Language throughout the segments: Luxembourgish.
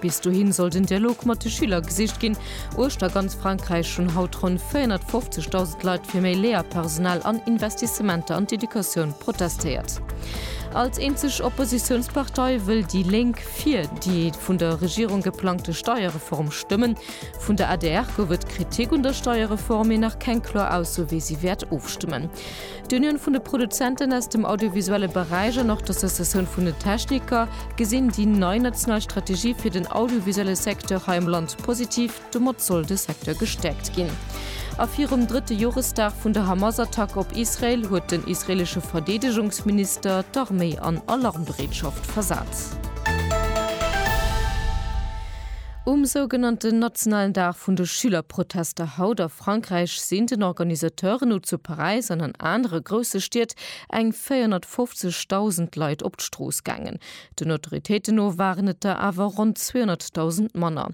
Bis dohin soll den Dialog mat de Schüler gesicht ginn. Uechter ganz Frankräich hunn haut ronn 450.000 Leit fir méi Léierpersonal an Investissementer an d'Educatioun protestéiert. Als eenzeg Oppositiounspartei wëll déi Lénk fir déi vun der Regierung geplangte Steierreform stëmmen. Vun der adr gouf et Kritik un der Steierreform, mee nach keng kloer Ausso wéi si wäert ofstëmmen. D'Unioun vun de Produzenten aus dem audiovisuelle Beräich an och d'Associatioun vun den Techniker gesinn déi nei national Strategie fir den audiovisuelle Secteur hei am Land positiv. Domat soll de Secteur gestäerkt ginn. A virum drëtte Joresdag vun der Hamas-Attack op Israel huet den israelesche Verdeedegungsminister d'Arméi an Alarmbereetschaft versat. Um sougenannten nationalen Dag vun de Schülerprotester haut a. Frankräich sinn den Organisateuren no zu Paräis an an anere grousse Stied eng 450.000 Leit op d'Strooss gaangen. Den Autoritéiten no waren et der awer ronn 200.000 manner.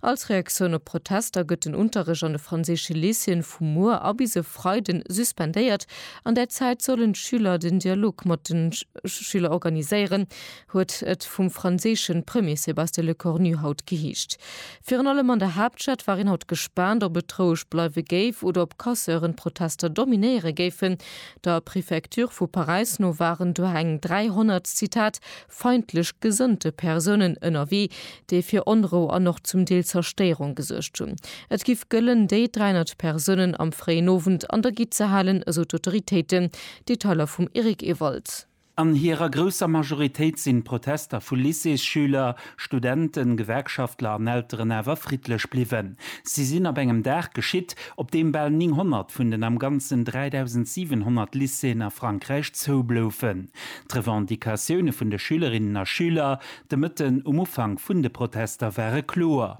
Als Reaktioun op d'Protester gëtt den Unterrecht an de franséische Lycéeën vu muer a bis e Freiden suspendéiert. An där Zäit sollen d'Schüler den Dialog mat de Schüler organiséieren. huet et vum franséische Premier Sébastien Lecornu haut geheescht. Virun allem an der Haaptstad war een haut gespaant, ob et roueg bleiwe géif oder ob Casseuren d'Protester dominéiere géifen. Der Prefecture vu Paräis no waren do eng 300, Zitat, feindlech gesënnte Persounen ënnerwee, déi fir Onrou an och zum Deel Zerstéierung gesuergt hunn. Et giff gëllen, déi 300 Persounen am fréien Owend an der Gitt ze halen, esou d'Autoritéiten. Detailer vum Eric Ewald. An hirer grousser Majoritéit sinn d'Protester vu Lycéesschüler, Studenten, Gewerkschaftler an Elteren awer friddlech bliwwen. Si sinn ab engem Dag geschitt, op deem bal 900 vun den am Ganzen 3.700 Lycéeën a Frankräich zoubloufen. D'Revendicatioune vun de Schülerinnen a Schüler de Mëtten um Ufank vun de Protester ware kloer.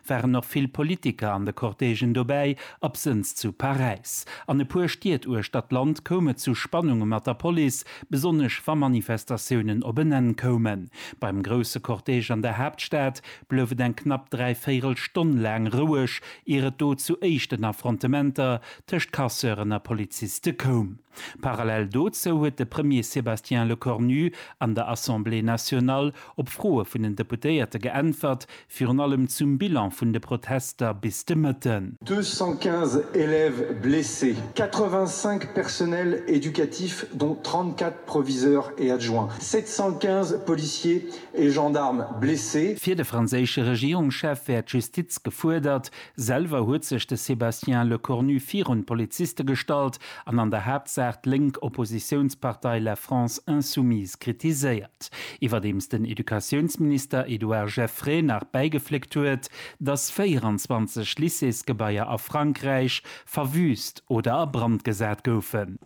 waren och vill Politiker an de Cortègen dobäi, absënns zu Paräis. An e puer Stied uechter d'Land koum et zu Spannunge mat der Police, besonnesch wa Manifestatiounen op en Enn koumen. Beim grousse Cortège an der Haaptstad blouf et eng knapp dräi Véirel Stonn laang roueg, ier et do zu éischten Affrontementer tëscht Casseuren a Poliziste koum. Parallel dozou huet de Premier Sébastien Lecornu an der Assemblée nationale op Froe vun den Deputéierte geäntwert, Virun allem zum Bilan vun de Protester bis de Mëtten. 215 élèves blessés, 85 personnels éducatifs dont 34 proviseurs et adjoints, 715 policiers et gendarmes blessés. Fir de franséische Regierungschef wär d'Justiz gefuerdert. Selwer huet sech de Sébastien Lecornu virun d'Poliziste gestallt an an der Haaptsaach d'lénk Oppositiounspartei La France Insoumise kritiséiert. Iwwerdeems den Educatiounsminister Edouard Geffray nach bäigefléckt huet, datt 24 Lycéesgebaier a Frankräich verwüüst oder a Brand gesat goufen.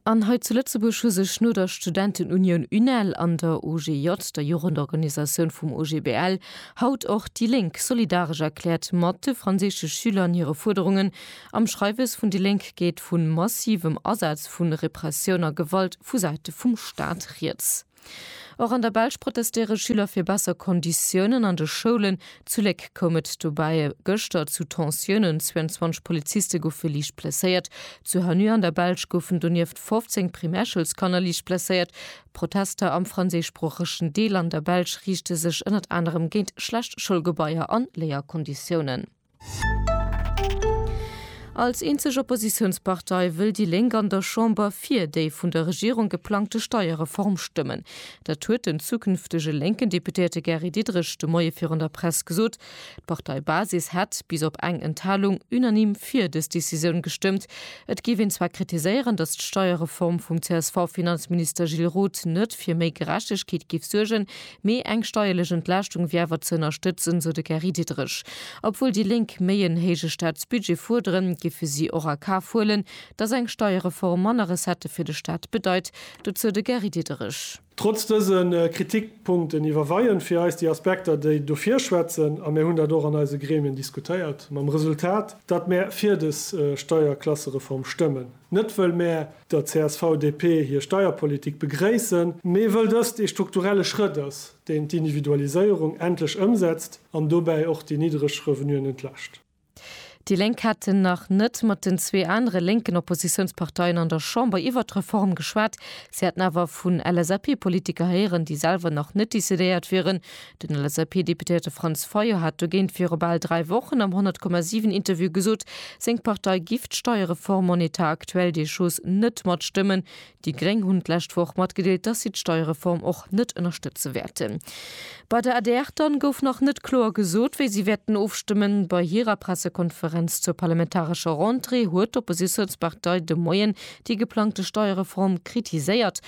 An hei zu Lëtzebuerg hu sech no der Studentenunioun UNEL an der OGJ, der Jugendorganisatioun vum OGBL, haut och déi Lénk solidaresch erkläert mat de franséische Schüler an hire Fuerderungen, Am Schreiwes vun déi Lénk geet vu massivem Asaz vu Repressioun a Gewalt vu Säite vum Staat rieds. Och an der Belsch protestéiere Schüler fir besser Konditiounen an de Schoulen. Zu Léck koum et dobäi gëschter zu Tensiounen, 22 Poliziste goufe liicht blesséiert. Zu Hanneux an der Belsch goufen donieft 15 Primärschoulskanner liicht blesséiert. D'Protester am franséischsproochegen Deel an der Belsch riichte sech ënnert anerem géint schlecht Schoulgebaier an Léierkonditiounen. Als eenzeg Oppositiounspartei wëll déi Lénk an der Chamber fir déi vun der Regierung geplangte Steierreform stëmmen. Dat huet den zukünftege lénken Deputéierte Gary Diderich de Moie virun der Press gesot. D'Parteibasis hätt, bis op eng Enthalung, unanime fir dës Decisioun gestëmmt. Et géif een zwar kritiséieren, datt d'Steierreform vum CSV-Finanzminister Gilles Roth net fir méi Gerechtegkeet géif suergen, Mee eng steierlech Entlaaschtung wier awer ze ënnerstëtzen, sou de Gary Diderich. Obwuel déi Lénk méi en héije Staatsbudget fuerderen, giffe si och a Kaf huelen, datt eng Steierreform manner Recettë fir de Staat bedeit. Dozou de Gary Diderich. Trotz dëse Kritikpunkten iwwerweien fir eis déi Aspekter, déi dofir schwätzen, a mir hunn dat och an eise Gremien diskutéiert, mam Resultat, datt mir fir des Steierklassereform stëmmen. Net wëll mär der CSV-DP hir Steierpolitik begréissen, mee wëll dëst ee strukturelle Schrëtt ass, deen d'Individualiséierung endlech ëmsetzt an dobäi och déi niddreg Revenuen entlascht. Déi Lénk hätten nach net mat den zwee anere lénken Oppositiounsparteien an der Chamber iwwert d'Reform geschwat. Si hätten awer vun LSAP-Politiker héieren, déi selwer nach net decidéiert wieren, Den LSAP-Deputéierte Franz Fayot hat dogéint viru bal dräi Wochen am 100,7 Interview gesot, seng Partei giff d'Steiereform en état actuel des choses net matstëmmen. Déi Gréng hunn d'lescht Woch matgedeelt, dass si d'Steiereform och net ënnerstëtze wäerten. Bei der adr dann gouf nach net kloer gesot, wéi si wäerten ofstëmmen. Bei hirer Pressekonferenz zur parlamentarescher Rentrée huet d'Oppositiounspartei de Moien déi geplangte Steiereform kritiséiert.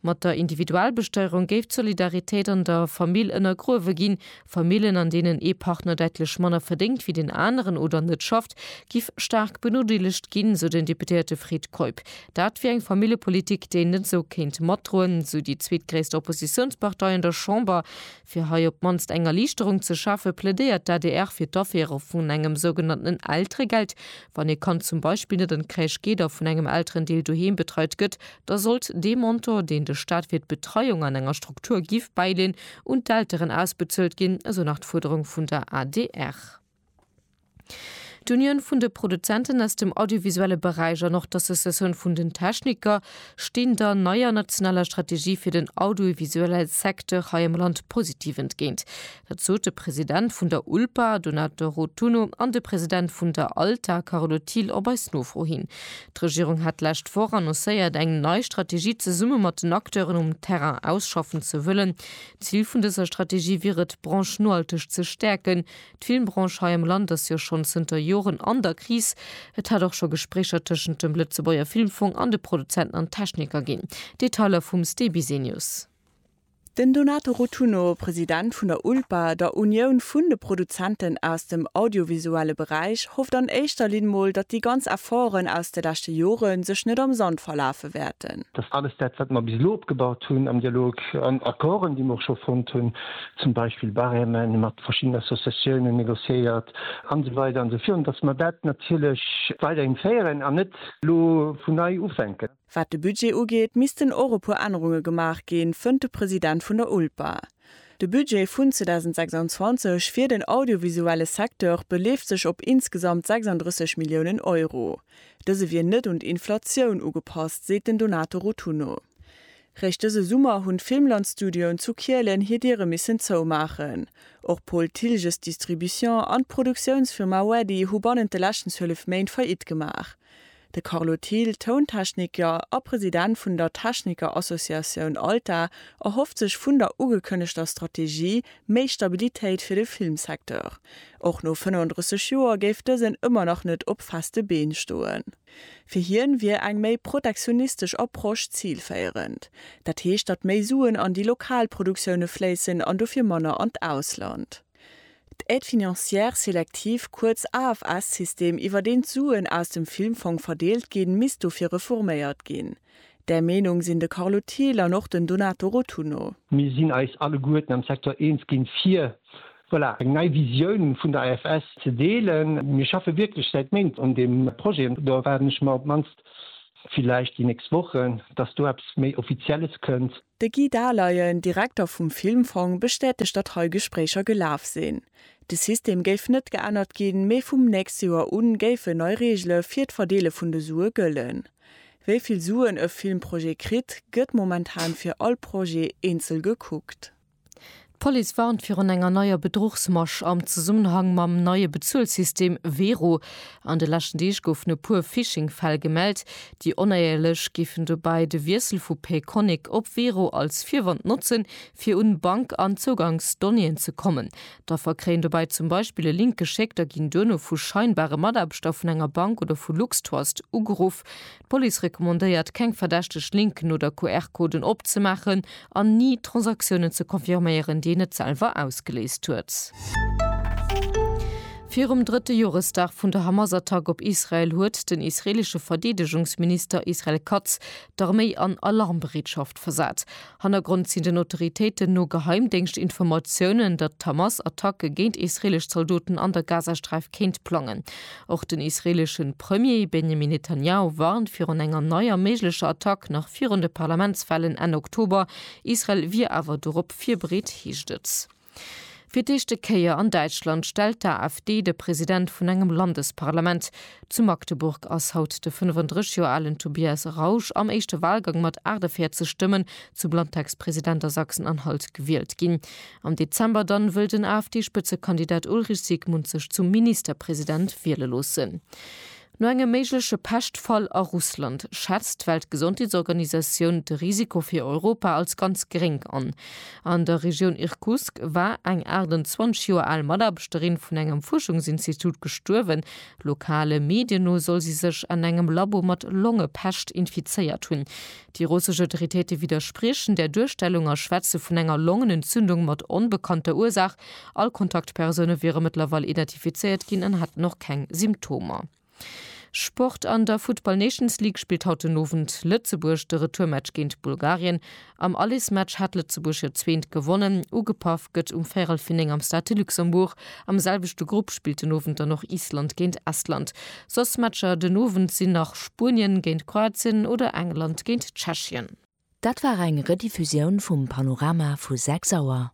Mat der Individualbesteierung géif d'Solidaritéit an der Famill ënnergruewe ginn. Famillen, an deenen ee Partner däitlech manner verdéngt wéi den aneren oder net schafft, giff staark benodeelegt ginn, sou den Deputéierte Fred Keup. Dat wier eng Familljepolitik, déi een net esou kéint matdroen, sou déi zweetgréisst Oppositiounspartei an der Chamber. Fir hei op d'mannst eng Erliichterung ze schafe plädéiert d'ADR fir d'Aféiere vun engem sougenannten Elteregeld. Wann ee Kand zum Beispill net an d'Crèche geet a vun engem Elterendeel doheem betreit gëtt, da sollt dee Montant, deen de Staat fir d'Betreiung an enger Struktur giff bäileen, un d'Elteren ausbezuelt ginn, esou nach d'Fuerderung vun der adr. D'Unioun vun de Produzenten aus dem audiovisuelle Beräich an och d'Associatioun vun den Techniker stinn der neier nationaler Strategie fir den audiovisuelle Secteur hei am Land positiv entgéint. Dat sot de President vun der ULPA, Donato Rotunno, an de President vun der ALTA, Carlo Thiel, op eis Nofro hin. D'Regierung hat d'lescht Woch annoncéiert, eng nei Strategie zesumme mat den Acteuren um Terrain ausschaffen ze wëllen. Zil vun dëser Strategie wier et, d'Branche nohalteg ze stäerken. D'Filmbranche hei am Land ass jo schonn zënter Joren an der Kris. Et hat och scho Gespréicher tëschent dem Lëtzebuerger Filmfong an de Produzenten an Techniker ginn. Detailer vum Ste Bisenius. Den Donato Rotunno, President vun der ULPA, der Unioun vun de Produzenten aus dem audiovisuelle Beräich, hofft an éischter Linn mol, datt déi ganz Efforten aus de leschte Jore sech net am Sand verlafe wäerten. Datt alles dat, wat mer bis elo opgebaut hunn am Dialog, an Accorden, déi mer och scho fonnt hunn, zum Beispill Barème mat verschiddenen Associatiounen négociéiert an esou weider an esou virun, dass mer dat natierlech weiderhin féieren an net elo vun nei ufänken. Wat de Budget ugeet, missten och e puer Ännerunge gemaach ginn, fënnt de President vun der ULPA. De Budget vun 2026 fir den audiovisuelle Secteur beleeft sech op insgesamt 36 Milliounen Euro. Dëse wier net un d'Inflatioun ugepasst, seet den Donato Rotunno. Réischt dëse Summer hunn d'Filmland-Studioen zu Kielen hir Diere missen zoumaachen. Och Paul Thilges Distribution an d'Produktiounsfirma Weddy hu bannent de leschten 12 Méint Faillite gemaach. De Carlo Thill, Tountechniker a President vun der Techniker-Associatioun ALTA, erhofft sech vun der ugekënnegter Strategie méi Stabilitéit fir de Filmsecteur. Och no 35 Joer géif dësen ëmmer nach net op feste Been stoen. Fir hien wier eng méi protektionistesch Approche zilféierend. Dat heescht, datt méi Suen an déi lokal Produktioune fléissen an dofir manner an d'Ausland. D'Aide financière sélective, kuerz AFS-System, iwwer deen d'Suen aus dem Filmfong verdeelt ginn, misst dofir reforméiert ginn. Där Meenung sinn de Carlo Thiel an och den Donato Rotunno. Mir sinn eis alleguerten am Secteur eens ginn, fir, voilà, eng nei Visioun vun der AFS ze deelen. Mir schaffe wierklech säit Méint un deem Projet an do erwaarden ech mer op d'mannst, villäicht déi nächst Wochen, dass do eppes méi Offizielles kënnt. De Guy Dahleyen, Direkter vum Filmfong, bestätegt, datt hei Gespréicher gelaf sinn. De System géif net geännert ginn, mee vum nächste Joer u géifen nei Reegele fir d'Verdeele vun de Sue gëllen. Wéi vill Suen e Filmprojet kritt, gëtt momentan fir all Projet eenzel gekuckt. D'Police warnt virun enger neier Bedruchsmasch am Zesummenhang mam neie Bezuelsystem Wero. An de leschten Deeg goufen e puer Phishing-Fäll gemellt. Déi Onéierlech géifen dobäi de Wiessel vu Payconiq op Wero als Virwand notzen, fir un Bank an Zougangsdonnéeën ze kommen. D'Affer kréien dobäi zum Beispill e Link geschéckt a ginn duerno vu scheinbare Mataarbechter vun enger Bank oder vu LuxTrust ugeruff. D'Police recommandéiert, keng verdächteg Linken oder QR-Coden opzemaachen an ni Transaktiounen ze confirméieren, déi een net selwer ausgeléist huet. Virum drëtte Joresdag vun der Hamas-Attack op Israel huet den israeelesche Verdeedegungsminister Israel Katz d'Arméi an Alarmbereetschaft versat. Hannergrond sinn den Autoritéiten no Geheimdéngschtinformatiounen, datt d'Hamas Attacke géint israeelesch Zaldoten an der Gazasträif kéint plangen. Och den israeelesche Premier Benjamin Netanjahu warnt virun enger neier méiglecher Attack nach virun de Parlamentswahlen Enn Oktober. Israel wier awer dorop virbereet, heescht et. Fir d'éischte Kéier an Däitschland stellt d'AfD de President vun engem Landesparlament. Zu Magdeburg ass haut de 35 Joer alen Tobias Rausch am éischte Walgang mat 48 Stëmmen zum Landtagspresident a Sachsen-Anhalt gewielt ginn. Am Dezember dann wëll den AfD-Spëtzekandidat Ulrich Siegmund sech zum Ministerpresident wiele loossen. No engem méigleche Peschtfall a Russland schätzt d'Weltgesondheetsorganisatioun de Risiko fir Europa als ganz geréng an. An der Regioun Irkutsk war eng 28 Joer al Mataarbechterin vun engem Fuerschungsinstitut gestuerwen. Lokale Medien no soll si sech an engem Labo mat Longepescht infizéiert hunn. Déi russesch Autoritéite widderspriechen där Duerstellung a schwätze vun enger Longenentzündung mat onbekannter Ursaach. All Kontaktpersoune wiere mëttlerweil identifizéiert ginn an hätten och keng Symptomer. Sport An der Futtball Nations League spillt haut den Owend Lëtzebuerg de Retourmatch géint Bulgarien. Am Allesmatch hat Lëtzebuerg hiert zweent gewonnen. Ugepaff gëtt um véirel vir néng am Stade de Luxembourg. Am selwechte Grupp spillt den Owend dann och Island géint Estland. Soss Matcher den Owend sinn nach Spuenien géint Kroatien oder England géint Tschechien. Dat war eng Rediffusioun vum Panorama vu 6 Auer.